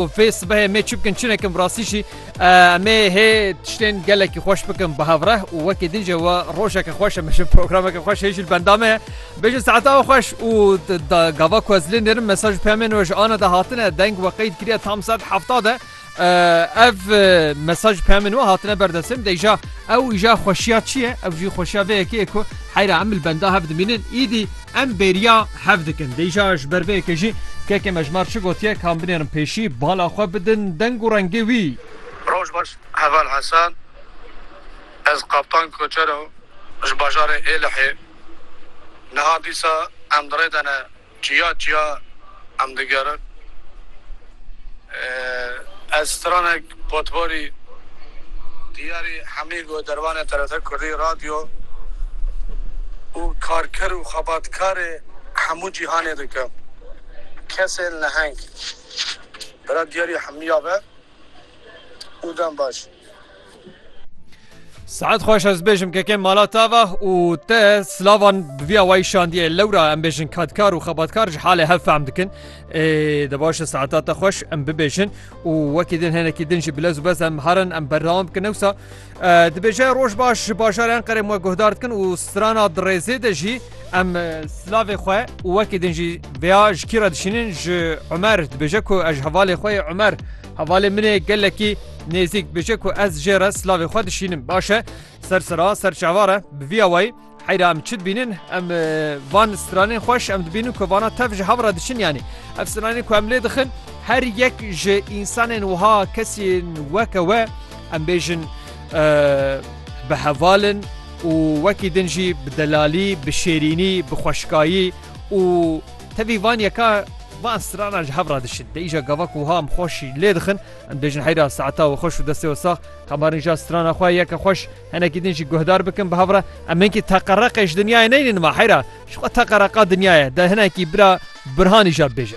Fê sibehê mê çi bikin çi nekin bi rastî jî em ê hê tiştên gelekî xweş bikin bi hevreh û wekî din jî we rojeke xweş em ji programeke xweş hê jî li benda me ye. Bêjin saeta ew xweş û gava ku ez lê nêrim mesaj peyamên we ji ana de hatine deng we qeyd kiriye tam sed hefta de ev mesaj peyamên we hatine berdestê min deyja ew îja xweşiya çi ye ew jî xweşiya vê yekê ku heyra em li benda hev dimînin îdî Em bêriya hev dikin. Dê îja ji ber vê yekê jî kekê me ji mar çi gotiye kan binêrin pêşî, bala xwe bidin deng û rengê wî. Roj baş heval Hesen ez Kaptan Koçero ji bajarê Êlihê niha dîsa em di rê de ne çiya çiya em digerin. Ez stranek potborî diyarî hemî go dervanê TRT Kurdî radyo û karker û xebatkarê hemû cîhanê dikim. Kesên leheng. Bira diyarî hemî ya be û dem baş. Saet xweş ez bêjim kekên mala tava û te silavan bi vî awayî şandiye lewra em bêjin kadkar û xebatkar ji halê hev fehm dikin de baş saeta te xweş em bibêjin û wekî din henekî din jî bilez û bez em herin em berdewam bikin ewsa dibêje roj baş ji bajaran qerem we guhdar dikin û strana dirêzê de jî em silavê xwe û wekî din jî veya ji kî re dişînin ji Umer dibêje ku ez hevalê xwe Umer Hevalê min ê gelekî nêzîk bije ku ez jê re silavê xwe dişînim. Baş e, ser sira, ser çavar e. Bi vî awayî heyra em çi dibînin? Em van stranên xweş em dibînin ku vana tev ji hev re diçin yanî. Ev stranên ku em lê dixin her yek ji însanên wiha kesên weke we em bêjin bi hevalin û wekî din jî bi delalî, bi şêrînî, bi xweşkayî, û tevî van yeka van strana ji hev re dişin de îja gava ku ham xweşî lê dixin em dêjin heyra saeta we xweş û destê we sax xebarin ja strana xwe yeke xweş henekî din jî guhdar bikin bi hev re em hinkî teqereqê ji dinyayê neynin ma heyra ji xwe teqereqa dinyayê de hinekî bira birhanî ja bêje.